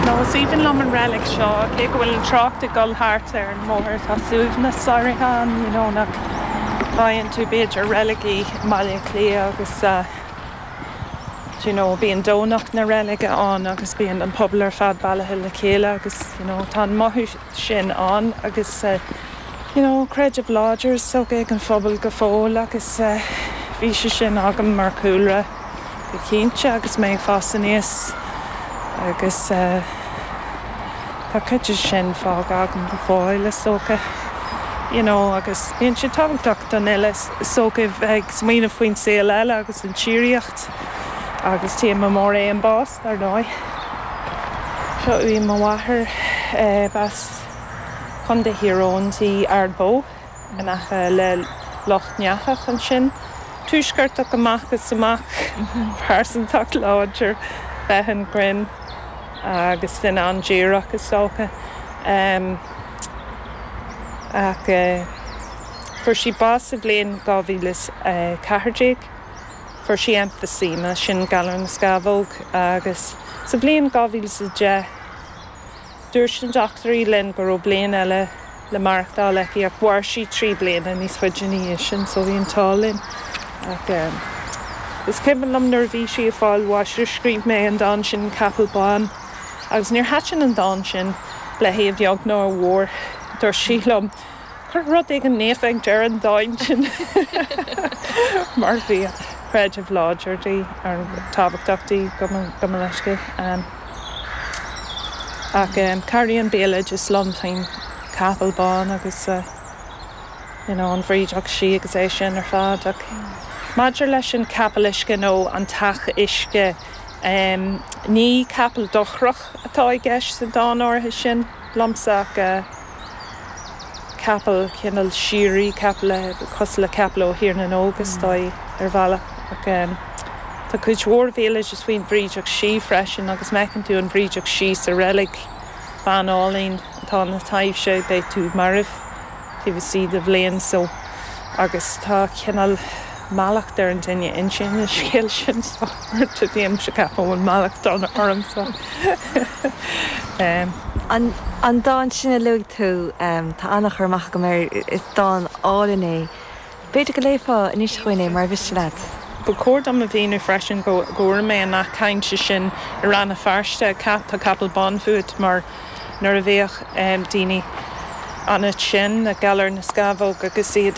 Ó is aoibhinn liom an reilig seo, cé go bhfuil an trácht ag dul thart ar an mbóthar. Tá suaimhneas áirithe ann, you know, nach bhfaigheann tú b'fhéidir i reiligí i mBaile Átha Cliath agus, do you know, bíonn Domhnach na reilige ann agus bíonn an pobal ar fad bailithe le chéile agus, you know, tá an mothú. sin ann agus you know creideamh láidir is dócha ag an phobal go fóill agus bhí sé sin agam mar chúlra go cinnte agus mé ag fás aníos agus tá cuid de sin fágtha agam go fóill is dócha you know agus bíonn sé tábhachtach don fhile is dócha bheith ag smaoineamh faoin saol eile agus an tsíoraíocht agus téama mór é an bás. Dar ndóigh, seo í mo mháthair. B'as Contae Thír Eoghain di, Ard Bó, in aice le Loch nEathach ansin. Tuaisceartach amach is amach, pearsantacht láidir, féith an ghrinn agus duine an-díreach, is dócha. Ach fuair sí bás sa bhliain 2014. Fuair sí emphysema, sin galar na scamhóg, agus sa bhliain 2010 dúirt na dochtúirí linn go raibh bliain eile le maireachtáil aici ach mhair sí trí bliana níos faide ina dhiaidh sin so bhí an t-ádh linn. Ach is cuimhin liom nuair a bhí sí ag fáil bháis gur scríobh mé an dán sin Capall Bán agus níor thaitin an dán sin léi a bheag ná a mhór. Dúirt sí liom. Cuir rud éigin naofa ag deireadh an dáin sin mar bhí an creideamh láidir di, ar tábhachtach di gabh mo leithscéal. Ach cabhraíonn béaloideas liom faoin gcapall bán agus you know an bhrídeach sí agus é sin ar fad. Ach maidir leis an chapall uisce nó an t-each uisce, ní capall dochrach atá i gceist sa dán áirithe sin liomsa ach. capall, cineál síoraí capall, cosúil le capall ó Thír na nÓg, is dóigh, ar bhealach. Ach tá cuid mhór bhéaloidis faoin bhrídeach sí freisin, agus má fheiceann tú an bhrídeach sí sa reilig, bean álainn atá ina taibhse, beidh tú marbh taobh istigh de bhliain. So, agus tá cineál mallacht ar an duine a insíonn an scéal sin. So. Rte déanaim seo ceapaim go bhfuil mallacht donn ormsa eh. An dán sin a luaigh tú, tá an-chur amach agam air, is dán álainn é. B'fhéidir go léifeá anois dúinn é murar mhiste leat? Ba chóir dom a mhíniú freisin go bhfuair mé an nath cainte sin i Rann Feirste, tá capall bán fút mar nuair a bhíodh daoine an-tinn ag galar na scamhóg agus iad.